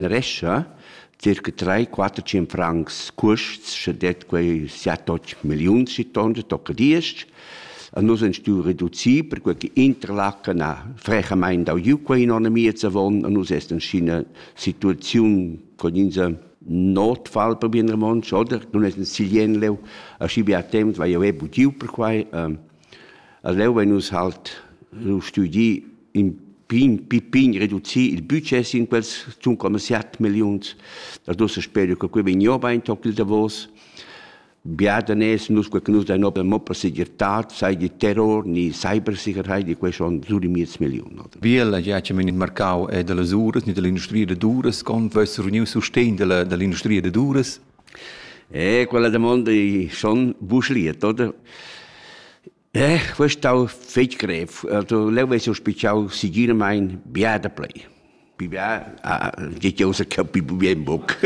Rescha circa tre quatter tschien francs cuosts scha det quei siat otg milliuns schi tonder tocca diesch. A nus han stu reducir perque che Interlaken ha frechamaing dau giu quei economia zavon, a nus est inschina situaziun con insa notfall per bien romontsch, oder? Nun es in silien leu, aschi bia temps vai jeu e bugiu per quai. A leu vein nus halt lu studi in pign, pign reducir il budget sin quels zun commerciat milliuns. Dad ussa speru che quei vegn jeu bein toc il davos. Bia daners nus quei che nus dein ober mo per segirtad, sei di terror ni cybersicherheit, di quei schon sur di miez milliun. Oder? Biella ja che men in marcau è dalla uras ni dall'industria da uras, con vess reuniu sustegn dalla, dall'industria da uras? Eh, quella damonda i schon busliet, oder? Eh, quest stau fetg grev. Also, leu vess jeu spitschau segirmein bia da plei. Pi bia, ah, geht ja außer capi bien boc.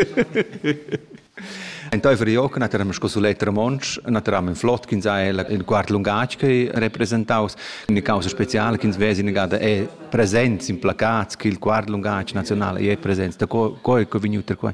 Entaifer Ioc naturam sco sulet romontsch, naturam in flot ch'ins ha il quart lungatg che representaus. Una causa speciale ch'ins vesi negada è presents in placats che il quart lungatg nazionale è presents. Da co, co è vegnuto qua?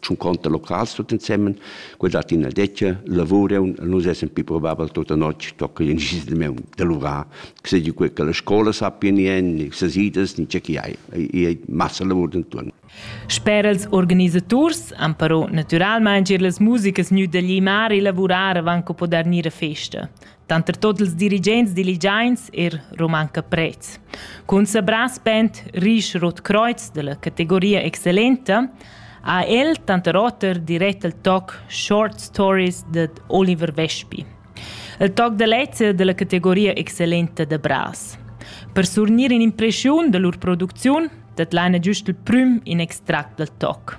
schon conta locals tut insemmen quella tina dettia lavurion nus essen pi probabel tutta notg tocca in gis de meu de lura che se quei che la scola sappia ni en ni se sidas ni c'è chi hai e massa lavur denton Sper els organisaturs han però naturalmein gir las musikas gnü da glimar e lavurar avant co poder gnir a festa. Tanter tot ils dirigents diligiains er romanca prez. Cun sabrà spent risch Rot Kreuz della categoria excellenta ha el tanter oter dirett il toc Short Stories de Oliver Vespi. Il toc de lezza della categoria excellenta de Bras. Per surnir in impression de lur producziun dat l'Anna giust il prüm in extract dal toc.